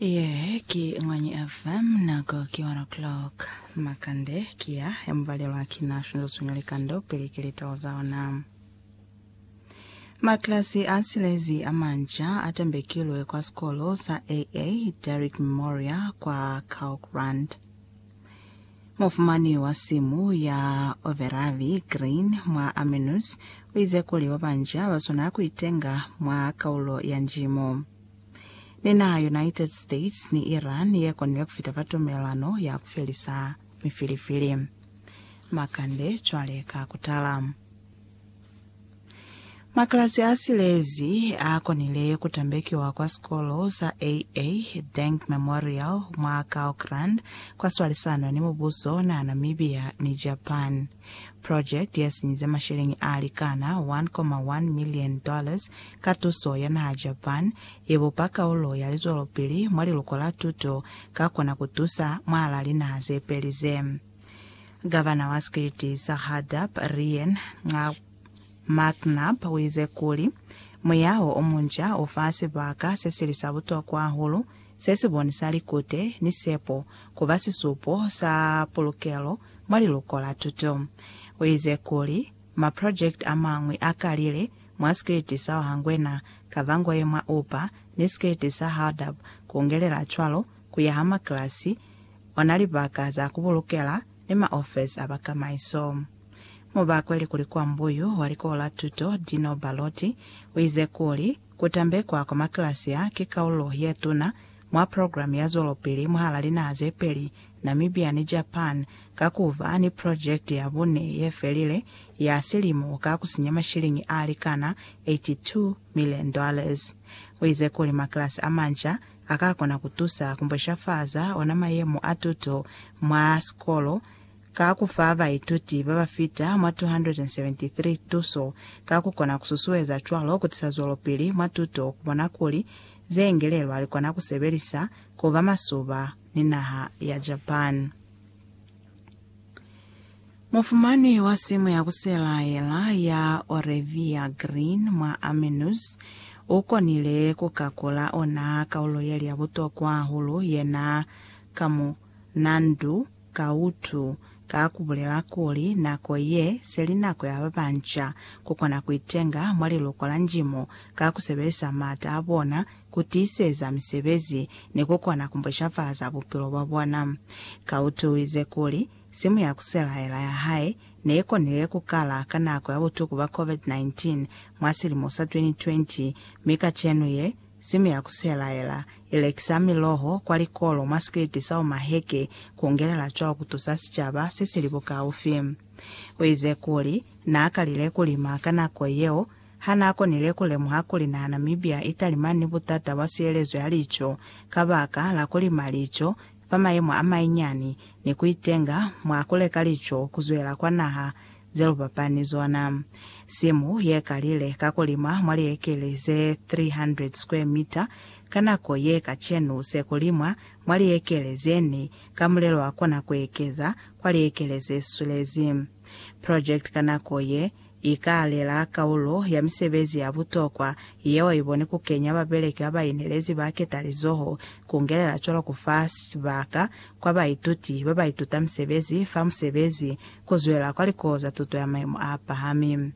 Yee ki Ngwanyi FM, nako ki 1 o'clock. Makande ki ya ya mubalelwa ki na shunza swinya likando pili ki litolo za ona. Maklasi a silezi a manja a tambekilwe kwa sikolo sa AA Derrick Memorial kwa Kaukland. Mufumani wa simu ya Overavi, Green, mwa Armenus, u ize kuli ba banji ha ba swana ku itenga mwa kaulo ya njimo. Ni naha United States ni Iran ye konile ku fita fa tumelelano ya ku felisa mifilifili. Makande cwale ka ku tala. Maklasi a silezi a konile ku tambekiwa kwa sikolo sa AA. Dank Memorial mwa Kaokrand kwa swalisano ni mubuso na Namibia ni Japan. Project ya sinyize masheleñi a likana 1.1 million dollars ka tuso ya naha Japan, ye bupa kaulo ya lizwelopili mwa liluko la tuto, ka kona ku tusa mwalaa linaha ze peli ze. Gavana wa sikiliti sa Hardup, Rian Nxaa. McNab uize kuli, Muyaho omunca ufa sibaka sesili sa butokwa hahulu sesibonisa likute ni sepo kuba sisupo sa pulukelo mwa liluko la tuto. Uize kuli, Maprojekiti amañwi akalile mwa sikiliti sa Ohangwena, Kavangoye mwa Upa, ni sikiliti sa Hardap, kungelela cwalo kuyaha makilasi, ona libaka za kubulukela, ni maofesi a bakamaiso. Mu ba kweli kuli kwa mbuyu wa likola tuto Dino Baloti uize kuli, Kutambekwa kwa makilasia ki kaulo ye tuna mwa program ya zwelopili mwahala linaha ze peli, Namibia ni Japan, ka ku ba ni project ya bune ye felile ya silimo ka ku sinya mashilingi a likana 82 million dollars. Uize kuli makilasi a manca a ka kona ku tusa ku mbweshafaza ona mayemo a tuto mwa sikolo, ka ku fa baituti ba ba fita mwa 273 tuso ka ku kona ku susueza cwalo ku tisa zwelopili mwa tuto ku bona kuli ze ingelelwa li kona ku sebelisa ku ba masuba ni naha ya Japan. Mufumanwi wa simu ya ku selaela ya Orevia Green mwa Armenus u konile ku kakula ona kaulo ye li ya butokwa hahulu yena ka mwa Nandu, Ka utu, ka kubulela kuli, nako ye, seli nako ya babanca kukona kuitenga mwa liloko la Njimu ka kusebelisa maata abona, kutiiseza misebezi, ni kukona kumbushafaza bupilo bwabona. Ka utu uize kuli, simu ya kuselaela ya hae neikonile kukala ka nako ya butuku bwa Covid-19 mwa silimo sa 2020, mi kacenu ye, Simu ya ku selaela i lekisa miloho kwa likolo mwa sikiliti sa Omaheke ku ngelela cwalo ku tusa sicaba se si li bukaufi. U ize kuli, N'a kalile ku lima ka nako yeo, ha n'a konile ku lemuha kuli naha Namibia i talimani ni butata bwa sielezo ya lico kabaka la ku lima lico fa mayemo a mainyani ni ku itenga mwa ku leka lico ku zwela kwa naha Zelubapani zona. Simu ye kalile ka ku lima mwa liekele ze 300 square meter ka nako ye kacenu se ku limwa mwa liekele ze ni ka mulelo wa kona ku ekeza kwa liekele ze swelezi. Project ka nako ye i ka alela kaulo ya misebezi ya butokwa yeo i boni ku kenya babeleki ba ba inelezi ba ketalizoho ku ngelela cwalo ku fa sibaka kwa baituti ba ba ituta misebezi fa musebezi Ku zwela kwa likuo za tuto ya mayemo a pahami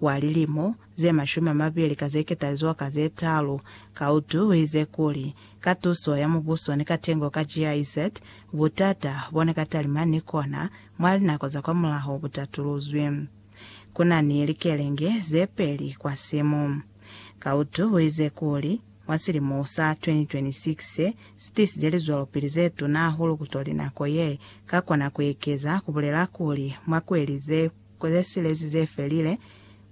wa lilimo ze mashumi a mabili ka ze ketalizoa ka ze talu, Kaudu uize kuli, Ka tuso ya mubuso ni katengo ka GIZ, butata bo ne ka talima ni kona mwa linako za kwa mulaho bu tatuluzwi. Ku na ni likelenge ze peli kwa simu. Kaudu uize kuli, Mwa silimo sa 2026 se si tisize lizwelopili ze tuna hahulu kutoli nako ye ka kona ku ekeza, ku bulela kuli, mwa kweli ze silezi ze felile,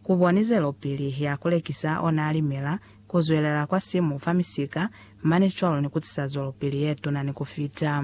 ku boni zwelopili ya ku lekisa ona limela, ku zwelela kwa simu fa misika, mane cwalo ni ku tisa zwelopili ye tuna ni ku fita.